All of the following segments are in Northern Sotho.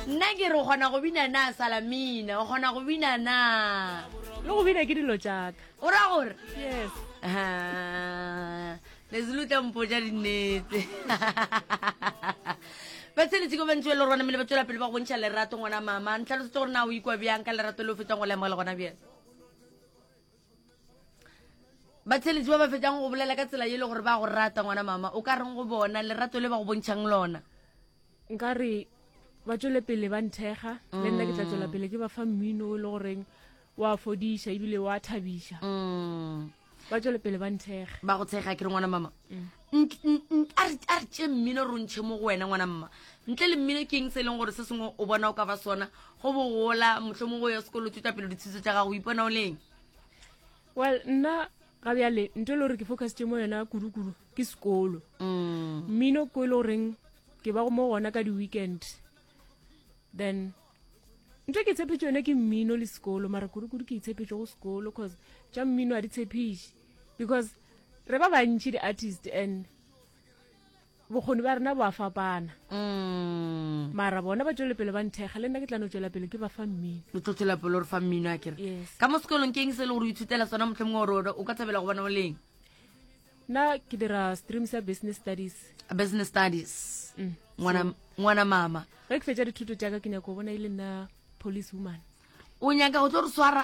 nna ke re o kgona go bina na salamina o kgona go bina na le go bina ke dilo jaaka o ra gore yes lezelutla mpo ja dinnete ba tsheletse ko bantsi ba le rona mele ba tswela pele ba gontšha lerato ngwana mama ntlhalosetse gore na o ikwa bjang ka lerato le o fetsang go lemogela gona bjang batheletši ba ba fetšang go bolela ka tsela e le gore ba go rata ngwana mama o ka reng go bona lerato le ba go bontšhang lona nka re ba tswele pele ba nthekga le nna ke tla tswela pele ke ba fa mmino o e le goreng wa fodiša ebile wa thabiša mm. ba tswele pele ba nthekga ba go tshega ke re ngwana mama mm. a re tše mmino re ntšhe mo go wena ngwana mma ntle le mmino ke eng se e leng gore se sengwe o bona o ka ba sona go bogola motlho mo go ya sekolo tšwetša pele ditshutso tša gago o ipona o leng well nna ga bjale nto e le gore ke focus tše mo yona kudu-kudu ke sekolo mm. mmino ko e le goreng ke ba go mo gona ka di-weekend then nto ke tshephetše yone ke mmino le sekolo mara kudu-kudu ke itshephetše go sekolo cause tša mmino a di tshephiše because re ba bantši di-artist and bokgoni ba rena bo a fapana mm. mara bona ba tšwele pele ba nthekga le nna ke tlano tšwela pele ke ba fa mmino o tlo tšwela pele gore fa mmino a kere ka mo sekolong keng se le gore o ithutela sona motlho mongwe gore o ka thabela go bona o leng nna ke dira stream sa business studies business studies mm. ngwana mama ge ke fetsa dithuto tsaka ke nyako bona e le nna police woman o nyaka go tlo re swara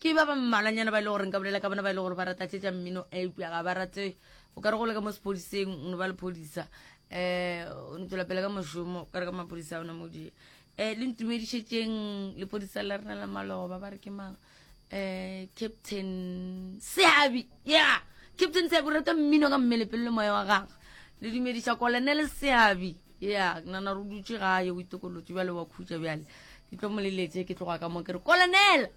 Ke ba ba mmalwanyana ba e le gore nka bolela ka bona ba e le gore ba rata tse tša mmino eupša ga ba rate o ka re go le ka mo sepodiseng o ne ba lephodisa um o ne tswela pele ka mošomo ka re ka maphodisa ona modie um le ntumedišetšeng lepodisa la rena la malogo ba ba re ke mang um captain seabi ya captain seabi o rata mmino ka mmele pele le moya wa gagwe le dumediša kolonele seabi ya nana re dutše gae o itokolotse bjale wa khutša bjale ke tlo moleletse ke tloga ka mo ke re kolonele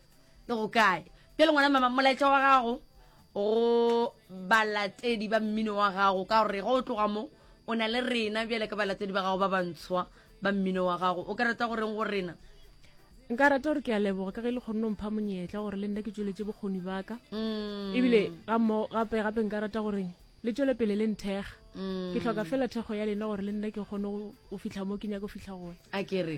le go kae pele ngwana mama molaetša wa gago go balatedi ba mmino wa gago ka gore go tloga mo o na le rena bjale ka balatedi ba gago ba bantshwa ba mmino wa gago o ka rata goreng go rena nka rata gore ke a leboga ka ge le kgonne mpha monyetla gore le nna ke tsweletse bokgoni baka mm. ebile gape gape nka rata gore le tswele pele le nthega mm. ke tlhoka fela thekgo ya lena gore le nna ke kgone go fitlha mo ke nyaka go fitlha gone a kere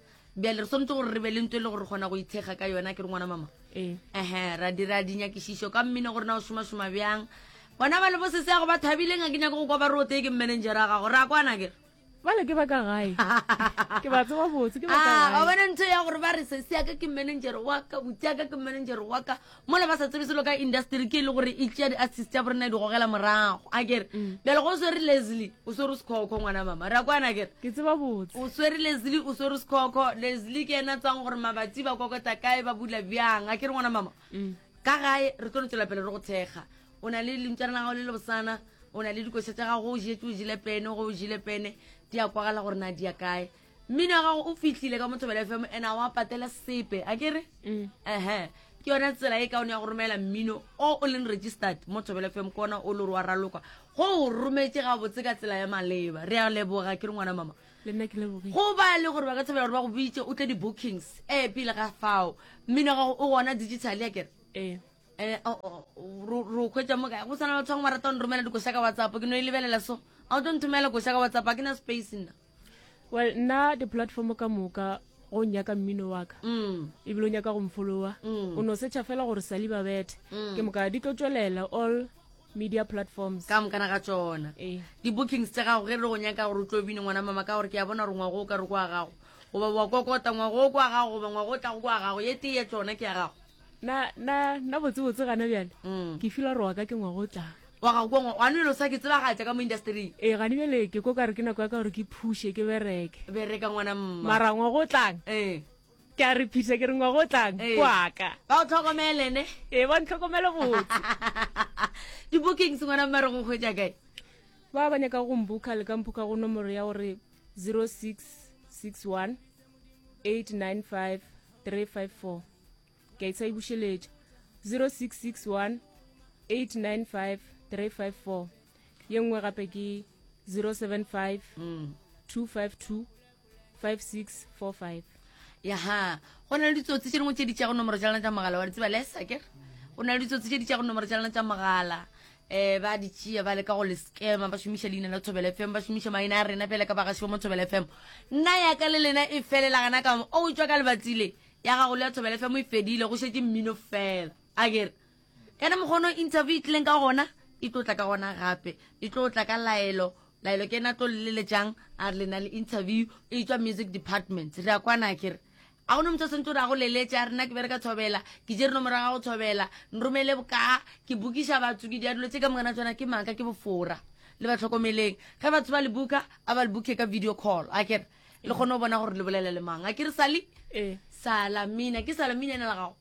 bjale re tshwanetse gore re be le nto e le gore kgona go ithekga ka yona ke re ngwana mama ehe eh. ra dira dinyakišišo ka mmine gore na o šomašoma bjang bona ba le bo sese yago ba thabileng a ke nyako go kwa ba re o tee ke manager a gago re a kwana kere bale ke baka gae ke ba tseba botse ke baka ah, gae bona ntho ya gore ba re sese yaka ke manager wa ka botse yaka ke manager wa ka mola ba sa tsebe selo ka industry ke e le gore e tšea di-artist ya borena e di gogela morago a kere mm. bjale go o swere leslie o swere o sekhokho ngwana mama re a kwana kere ke tseba botse o swere leslie o swere sekhokho leslie ke ena tswang gore mabatsi ba kokota kae ba bula bjang a kere ngwana mama mm. ka gae re tlo no tswela pele re go thekga o na le lentšana la gago le le bosana o na le dikoša tsa gago o jetse o jile pene go o jile pene di ya kwagala gore na di ya kae mmino wa gago o fihlile ka mothobela fm and a wa patela sepe a kere mm. ehe ke yone tsela e kaone ya go romela mmino o o leng registered mo thobela fm ke ona o le gore wa raloka go o rometse ga botse ka tsela ya maleba re a leboga ke re ngwana mama go ba le gore ba ka thobela gore ba go bitse o tle di-bookings e pele ga fao mmino gago o gona digital ya kere ee eh, oh, oh, oh, ro kgwetsa mo kae go tshwana batho bangwe ba rata go nromela dikoša ka whatsapp ke no e lebelela so a o tlo nthomela koša ka whatsapp a ke na space nna well nna di-platform ka moka go nyaka mmino wa ka mm. ebile o nyaka go mfolowa mm. o no setšha fela gore sali ba bethe mm. ke moka di tlo tswelela all media platforms ka mokana ga tsona eh. di-bookings tse gago ge re go nyaka gore o tlo bine ngwana mama ka gore ke ya bona gore ngwago o ka re kwa gago goba wa kokota ngwago o kwa gago goba ngwago o tlago kwa gago ye tee ye tsona ke ya gago na na na botsebotse gana bjale mm. ke fila gore wa ka ke ngwago o tlang wa ga ko ngwago gane bjale o sa ke tsebagatša ka mo industry ee eh, gane bjale ke ko ka re ke nako ya ka gore ke phushe ke bereke bereka ngwana mma mara ngwago o tlang ee ke a re phisa ke re ngwa go tlang ee. kwaka ba o tlhokomele ne ee ba ntlhokomele botse di-bookings ngwana mmare go kgwetsa kae ba ba nyaka go mbuka le ka mphuka go nomoro ya gore 0661 895 354 ke a itsai bušeletša 0661 895 354 ye nngwe gape ke 075 252 5645 yaha go na le ditsotsi tse dingwe tse di tšago nomoro tša lena tša mogala wa di tseba lesa kere go na le ditsotsi tse di tšago nomoro tša lena tša mogala um ba di tšea ba leka go le scama ba šomiša leina la thobela fm ba šomiša maina a rena fela ka bagaši ba mo thobela fm nna yaka le lena e felela gana ka o tswa ka lebatsile ya gago le ya thobela fm e fedile go šetše mmino fela a kere ene mokgono interview e tlileng ka gona e tlo tla ka gona gape e tlo tla ka laelo laelo ke ena tlo leleletšang a re le na le interview e tswa music department re a kwana a kere a gone motho o sentse o re a go leletše a rena ke bere ka thobela ke je reno morago ga go thobela nromele bokaa ke bokiša batho ke diadulo tse ka mongana tsona ke maaka ke bofora le ba tlhokomeleng ge batho ba le buka a ba le buke ka video call a kere le kgone go bona gore le bolela le mang a ke re sali ee. salamina ke salamina ena la gago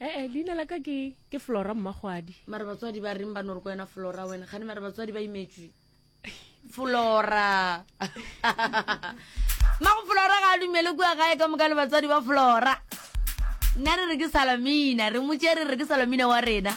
ee eh, eh, leina la ka ke ke flora mmagwadi mare batswadi ba reng ba nore ko wena flora wena gane mare batswadi ba imetswe flora mago flora ga a dumele kua gae ka moka le batswadi ba flora nna re re ke salamina re motse re re ke salamina wa rena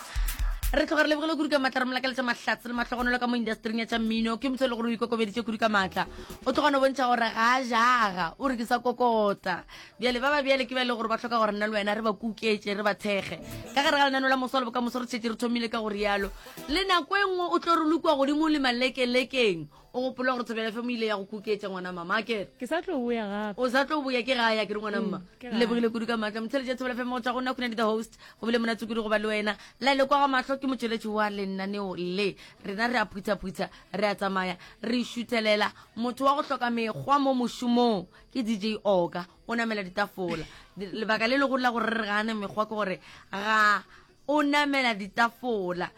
re tlhoga re lebogile kudu ka maatla re molakaletsa mahlatse le matlhogonelo ka mo industering ya tsa mmino ke motho e le gore o ikokobeditse kudu ka maatla o tloga no bontšha gore ga a jaga o re ke sa kokota bjale ba ba bjale ke ba e le gore ba tlhoka gore nna le wena re ba kuketše re ba thekge ka gare ga lenano la moso le bokamoso re tšhetse re thomile ka go rialo le nako e nngwe o tlo re lukwa godimo le malekelekeng o gopola gore thobela fe mo ile ya go kuketša ngwana mama a kere ke sa tlo boya gape o sa tlo boya ke ga ya ke re ngwana mma mm, ke lebogile kudu ka maatla motheletša thobela fe mo go tswa go nna khonedi the host go bile monatse kudu go ba le wena la ile kwa ga matlho ke motšweletši wa lenaneo le rena re a phuthaphutha Re a tsamaya re šuthelela. Motho wa go hloka mekgwa mo mošomong ke DJ Oka. O namela ditafola. Lebaka le legolo la gore re re ga a na mekgwa ke gore ga o namela ditafola.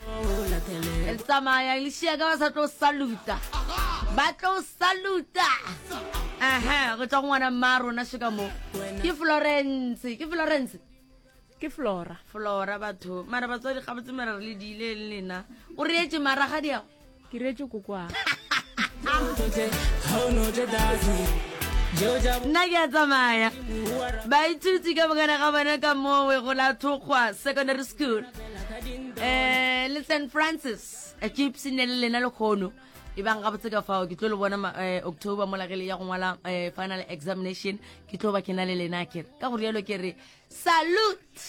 Re tsamaya lešia ka ba sa tlo saluta. Ba tlo saluta. Aha, go tšwa go ngwana mma rona šeka mo. Ke Florence, ke Florence. ke flora flora batho mara batswadi ga botse mara re le diile le lena o reetse mara ga diago ke reetse kokoa nna ke a tsamaya baithuti ka bokana ga bona ka mowe go la thokgwa secondary school um le st francis a gypsy ne le lena lekgono e bang gabotse ka fao ke tlo le bona eh, october mola ge le ya go ngwala eh, final examination ke tlo ba ke na le lena kere ka go rialo ke re salute